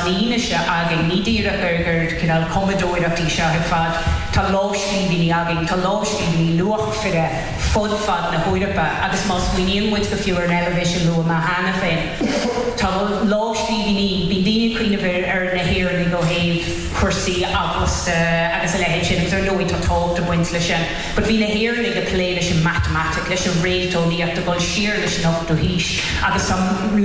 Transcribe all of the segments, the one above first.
fhianaise againn. Ní díreach gur cineál cumadóireacht í seo ar fad. Tá lámhscríbhinní againn, tá lámhscríbhinní luachmhaire fud fad na hEorpa agus má smaoiníonn muid go fiú ar an Eilvéis a luadh cheana féin, tá lámhscríbhinní, bíonn daoine ag cuimhneamh ar na hÉireannaigh ó thaobh cúrsaí eaglasta agus a leithéid sin agus ar ndóigh tá tábhacht ag baint leis sin but bhí na hÉireannaigh ag plé leis an matamaitic, leis an réalteolaíocht, ag dul siar go dtí an 8ú haois agus tá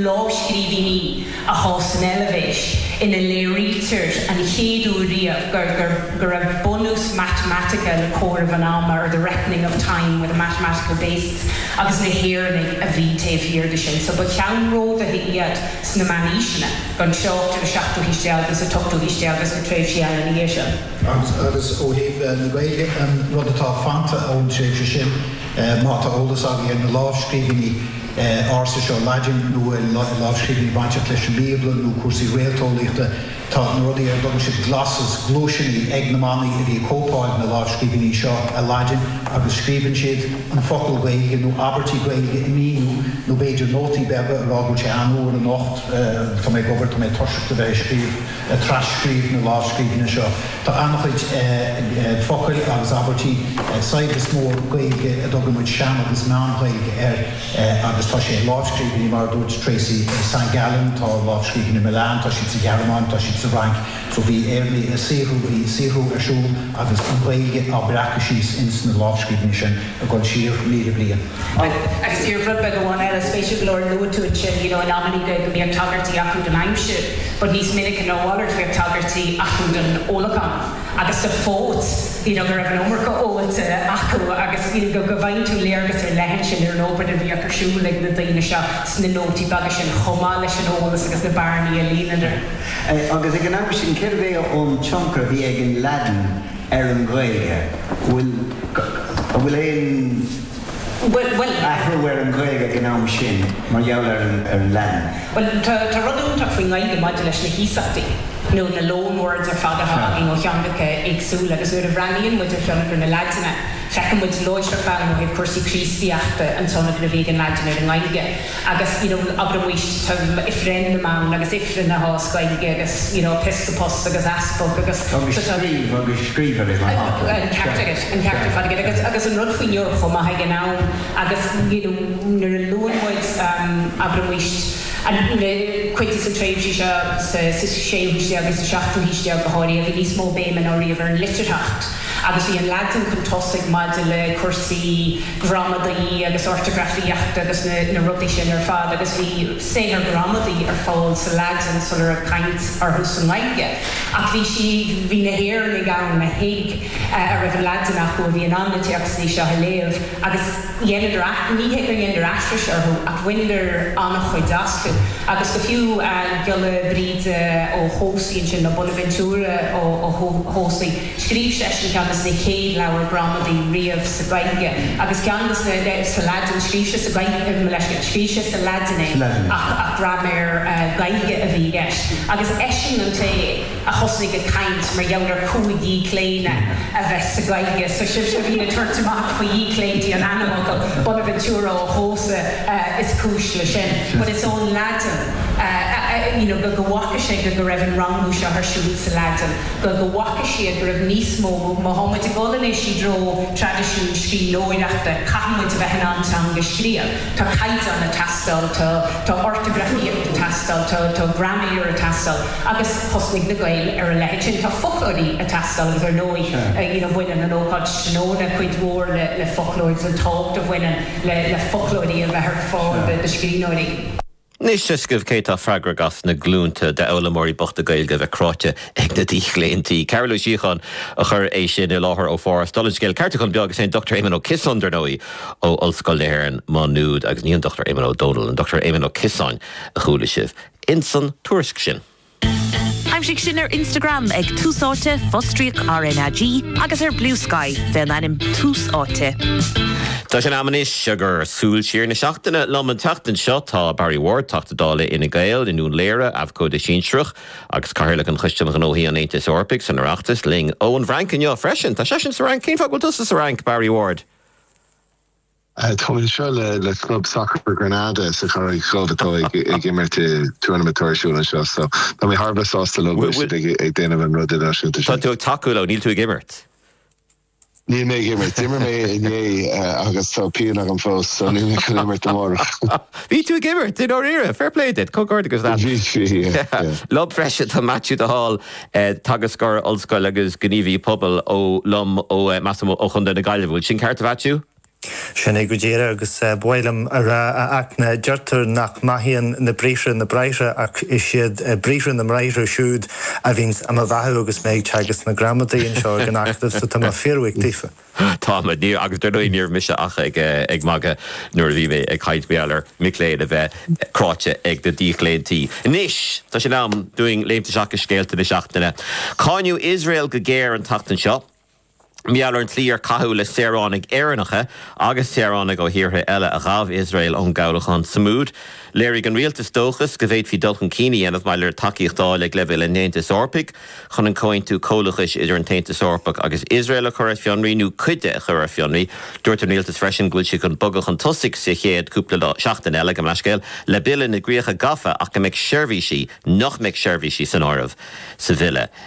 lámhscríbhinní. i gcás san Eilvéis, ina léirítear an chéad uair riamh go go raibh bunús matamaitice le comhaireamh an ama, or the reckoning of time with a mathematical basis, agus na hÉireannaigh a bhí taobh thiar de sin. So ba cheannródaithe iad sna meánaoiseanna, gan trácht ar an seachtú haois déag, is an t-ochtú haois déag, is na tréimhsí eile ina dhiaidh sin. Agus ó thaobh na Gaeilge, an rud atá fanta ón tréimhse sin, má tá eolas againn ar na lámhscríbhinní, ársa seo Laidin nó i lámhscríbhinní bainteach leis an mBíobla nó cúrsaí réalteolaíochta, tá na rudaí ar a dtugann siad glosses, gluaiseanna, ag na manaigh a bhí ag cóipeáil na lámhscríbhinní seo i Laidin agus scríobhann siad an focal Gaeilge nó abairtí Gaeilge ag míniú nó b'fhéidir nótaí beaga ag rá go bhfuil sé an-fhuar anocht, tá mé ag obair, tá mé ag toiseacht a bheith ag scríobh. ag tras-scríobh na lámhscríbhinne seo. Tá an-chuid focail agus abairtí saibhreas mór Gaeilge a dtugann muid sean agus meán-Ghaeilge air, agus tá sé i lámhscríbhinní mar a dúirt Tracey, San Gallen, tá lámhscríbhinní i Milan, tá siad sa Ghearmáin, tá siad sa Fhrainc, so bhí Éireannaigh ag saothrú, bhí saothrú ar siúl agus an Ghaeilge á breacadh síos ins na lámhscríbhinní sin. ag goil siar míle bliain. Bhuel, agus aon rud beag amháin eile, spéisiúil go leor luaigh tú ansin, you know, in amannaí go mbíodh tagairtí acu don aimsir, but níos minice ná a mhalairt bhíodh tagairtí acu don ólachán agus do phóit, you know, go raibh an iomarca ólta acu agus, you know, go bhfaigheann tú léargas ar leith ansin ar an obair a bhíodh ar siúl ag na daoine seo sna nótaí beaga sin chomh maith leis an eolas agus na bearnaí á líonadh. Agus ag an am sin, céard é an tionchar a bhí ag an Laidin? ar an Ghaeilge, go bhfuil, an bhfuil aon athrú ar an Ghaeilge ag an am sin mar gheall ar an Laidin? Bhuel, tá rud iontach faoin nGaeilge maidir leis na hiasachtaí, nó na loan words ar fad atá againn ó theangacha éagsúla, agus nuair a bhreathnaíonn muid ar thionchar na Laidine, feiceann muid láithreach bonn ó thaobh cúrsaí Críostaíochta an tionchar a bhí ag an Laidin ar an nGaeilge. agus, you know, abraimis tá offerendum ann agus aifreann againn sa Ghaeilge agus, you know, episcopos agus easpag agus. Agus scríobh, agus scribere ar ndóigh. An ceart agat, an ceart ar fad agat. Agus, agus an rud faoin Eoraip chomh maith ag an am, agus, you know, nuair a luann muid, abraimis, an, na, cuid de na tréimhsí seo sa, sa séú haois déag agus sa seachtú haois déag go háirithe, bhí níos mó béime ná riamh ar an litearthacht, agus bhí an Laidin chun tosaigh maidir le cúrsaí, gramadaí agus ortagrafaíocht agus na rudaí sin ar fad agus bhí saothair ghramadaí ar fáil sa Laidin sula raibh caint orthu sa nGaeilge ach bhí sí, bhí na hÉireannaigh ann a thuig, a raibh an Laidin acu, a bhí in ann na téacsanna seo a léamh agus dheineadar, ní hé gur dheineadar aithris orthu ach bhaineadar an-chuid astu agus go fiú Giolla Bríde Ó hEodhasa ansin, nó Bonaventura Ó hEodhasa. Scríobh seisean ceann des na chéad leabhair gramadaí riamh sa Gaeilge, agus ceann des na, sa Laidin, scríobh sé sa Gaeilge, mo leithscéal, scríobh sé sa Laidin é ach gramadach Gaeilge a bhí i gceist, agus eisean an té a thosnaigh ag caint mar gheall ar chúig dhíochlaonadh a bheith sa Ghaeilge, so sibhse a bhíonn ag tabhairt amach faoi dhíochlaontaí an ainmfhocail, Bonaventura ó Hósa is cúis le sin, but is ón Laidin, you know, go bhfaca sé go go raibh an rangú seo ar siúl sa Laidin. go bhfaca siad go raibh níos mó má tá muid ag dul anois i dtreo traidisiúin scríbhneoireachta, caithfidh muid a bheith in ann teanga a scríobh, tá caighdeán ag teastáil, tá tá ortagrafaíocht ag teastáil, tá tá graiméar ag teastáil agus thosnaigh na Gaeil ar a leithéid sin, tá foclóirí ag teastáil agus ar ndóigh you know baineann an ócáid tráthnóna cuid mhór le le foclóir, an tábhacht a bhaineann le le foclóirí a bheith ar fáil do scríbhneoirí. Anois tá a fhios agaibh cé tá freagrach as na glúinte d'fhoghlaimeoirí bochta Gaeilge a bheith cráite ag na díochlaontaí? Cathal Ó Síocháin a chuir é sin i láthair ó Pháras. Dála an scéil, ceartúchán beag, is é an Dr Éamon Ó Ciosáin, dar ndóigh, ó Ollscoil na hÉireann, Má Nuad, agus ní an Dr Éamonn Ó Dónaill, an Dr Éamon Ó Ciosáin a chuala sibh insan tuairisc sin. Aimsigh sinn ar Instagram ag Tús Áite, fostríoc RnaG, agus ar Bluesky fé an ainm Tús Áite. Tá sé in am anois dár Súil Siar na Seachtaine. Liom an tseachtain seo tá Barry Ward, Teachta Dála Fhine Gael i nDún Laoghaire, Abhcóide Sinsearach agus Cathaoirleach an Choiste um Ghnóthaí an Aontais Eorpaigh san Oireachtas, linn ón bhFrainc inniu freisin. Tá seisean sa Fhrainc. Cén fáth go bhfuil tusa sa Fhrainc, Barry Ward? Táimid anseo le club sacair Granada sa Charraig Dhubh atá ag imirt i tournament idirnáisiúnta anseo so tá mé thar a bheith sásta leo go bhfuil siad ag déanamh an rud idirnáisiúnta sin. Tá tú ag tacú leo, níl tú ag imirt. Níl mé ag imirt. D'imir mé inné agus tá pian agam fós so níl mé chun imirt amárach. Bhí tú ag imirt i ndáiríre, fair play duit, comhghairdeachas leat. Bhí, bhí, yeah. Liom freisin, tá Maitiú de Hál, teagascóir ollscoile agus gníomhaí pobail liom ó Maigh Cuilinn ó Chontae na Gaillimhe. Bhfuil sin ceart a Mhaitiú? Sin é go díreadh, agus ba mhaith liom a rá, a Fhachtna, deirtear nach mbeathaíonn na briathra na bráithre, ach is iad briathra na mbráithre siúd a bhíonns á mo bheathú agus mé ag teagasc na gramadaí anseo ag an Acadamh, so tá mé fíorbhuíoch daofa. Táimid, níor, agus dar ndóigh níorbh mise ach ag, ag magadh nuair a bhí mé ag caint faoi mhic léinn a bheith cráite ag na díochlaontaí. Anois, tá sé in am dúinn léimt isteach i scéalta na seachtaine. Cáineadh Iosrael go géar an tseachtain seo. Mar gheall ar an tslí ar caitheadh le saoránaigh Éireannacha agus saoránaigh ó thíortha eile a ghabh Iosrael ón gcabhlachán Sumud, léirigh an rialtas dóchas go bhféadfaí dul chun cinn a dhéanamh maidir le tacaíocht d'fháil ag leibhéal an Aontais Eorpaigh chun an comhaontú comhlachais idir an tAontas Eorpach agus Iosrael a chur ar fionraí nó cuid de a chur ar fionraí. Dúirt an rialtas freisin go bhfuil siad chun bogadh chun tosaigh sa chéad cúpla lá, seachtain eile, gabh mo leithscéal, le bille na gcríocha gafa ach go mbeidh seirbhísí, nach mbeidh seirbhísí san áireamh sa bhille.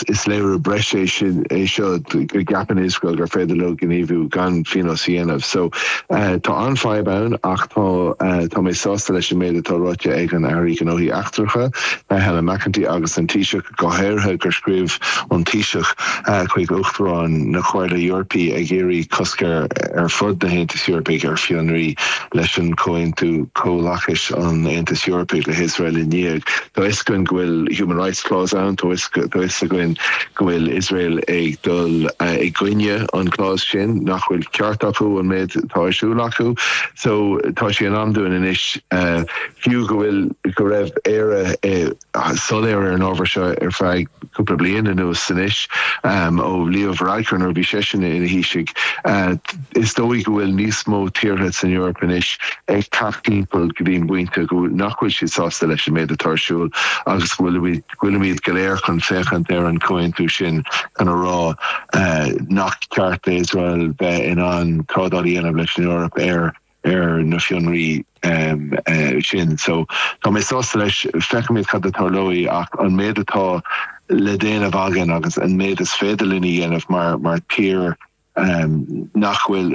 Ach is léiriú breise é seo go gceapann Iosrael gur féidir leo gníomhú gan phionós a dhéanamh. So, tá an-fhadhb ann, ach tá, tá mé sásta leis an méid atá ráite ag an Aire Gnóthaí Eachtracha, Helen McEntee, agus an Taoiseach, go háirithe, gur scríobh an Taoiseach chuig Uachtarán na Comhairle Eorpaí ag iarraidh cosc ar ar fud na hAontais Eorpaigh ar fionraí leis an Comhaontú Comhlachais an Aontais Eorpaigh le hIosrael i ndiaidh. Tá 'fhios againn go bhfuil Human Rights Clause ann, tá 'fhios. tá 'fhios againn, go bhfuil Iosrael ag dul i gcoinne an clause sin, nach bhfuil ceart acu an méid atá ar siúl acu. So, tá sé in am dúinn anois, fiú go bhfuil, go raibh Éire soiléir ar an ábhar seo ar feadh cúpla bliain anuas anois, ó Leo Varadkar nuair a bhí seisean ina Thaoisigh, is dóigh go bhfuil níos mó tíortha san Eoraip anois ag teacht timpeall go dtí an bpointe nach bhfuil siad sásta leis an méid atá ar siúl agus go bhfuil go bhfuilimid go léir chun féachaint ar an chomhaontú sin chun a rá nach ceart d'Iosrael bheith in ann trádáil a dhéanamh leis an Eoraip ar ar na fionraí sin. So Tá mé sásta leis, feicfimid cad a tharlóidh ach an méid atá le déanamh againn agus an méid is féidir linn a dhéanamh mar tír nach bhfuil,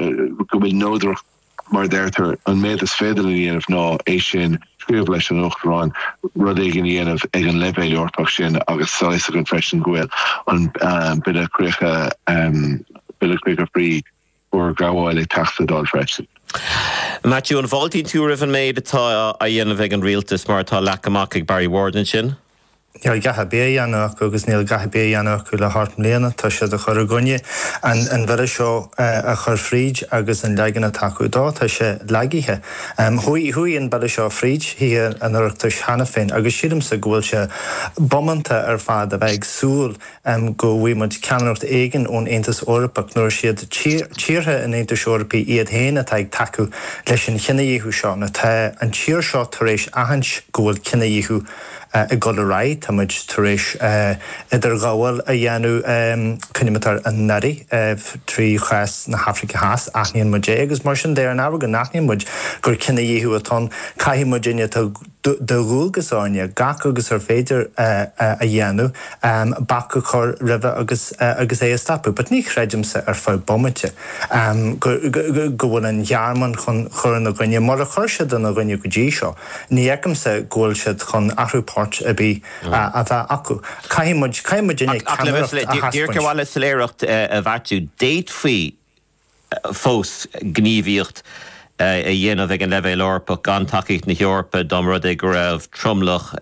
go bhfuil neodracht mar a deirtear, an méid is féidir linn a dhéanamh ná é sin, scríobh leis an Uachtarán rud éigin a dhéanamh ag an leibhéal Eorpach sin agus tá fhios againn freisin go bhfuil an Bille Críocha, Bille Críocha faoi Fhorghabháil ag teacht sa Dáil freisin. Maitiú, an bhfáiltíonn tú roimh an méid atá á dhéanamh ag an Rialtas mar atá leagtha amach ag Barry Ward ansin? Níl a dhath ar bith á dhéanamh acu agus níl a dhath ar bith á dhéanamh acu le hocht mbliana. Tá siad ag cur i gcoinne an bhille seo a chur fríd agus an leagan atá acu dó, tá sé lagaithe. Chuaigh an bille seo fríd Thithe an Oireachtais cheana féin agus sílimse go bhfuil sé bómánta ar fad a bheith ag súil go bhfaighidh muid ceannaireacht éigin ón Aontas Eorpach nuair is iad tíortha an Aontais Eorpaigh iad féin atá ag tacú leis an chinedhíothú seo. Tá an tír seo tar éis aithint go bhfuil cinedhíothú. ag dul ar aghaidh, tá muid tar éis idirghabháil a dhéanamh, coinnímid ar ár n-aire, trí chás na hAfraice Theas, aithníonn muid é agus mar sin de, ar an ábhar go n-aithníonn muid gur cinedhíothú atá ann, caithfidh muidinne, tá de dhualgas orainne gach agus ar féidir a dhéanamh, bac a chur roimhe agus agus é a stopadh. But ní chreidimse ar feadh bomaite go go go bhfuil an Ghearmáin chun chur ina gcoinne mar a chuir siad ina gcoinne go dtí seo. Ní fheicimse go bhfuil siad chun athrú poirt ar bith a bheith acu. Caithfidh muid, caithfidh muidinne ceannaireacht a theaspáint. Díreach le soiléireacht a bheartú. D'fhéadfaí fós gníomhaíocht a dhéanamh ag an leibhéal Eorpach gan tacaíocht na hEorpa dá mba rud é go raibh tromlach,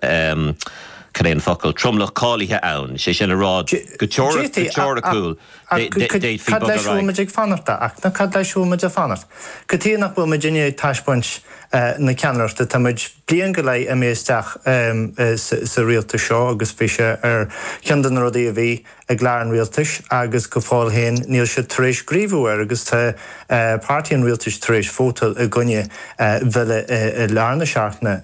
cad é an focal, tromlach cáilithe ann, sé sin a rá go teoiriciúil. Cad leis a bhfuil muid ag fanacht? Ach cad leis a bhfuil muid ag fanacht? Cad chuige nach bhfuil muidinne ag taispeáint na ceannaireachta. Tá muid bliain go leith imithe isteach sa rialtas seo agus bhí sé ar cheann de na rudaí a bhí i gclár an rialtais agus go fóill féin níl siad tar éis gníomhú air agus tá páirtí an rialtais tar éis vótáil i gcoinne bhille i lár na seachtaine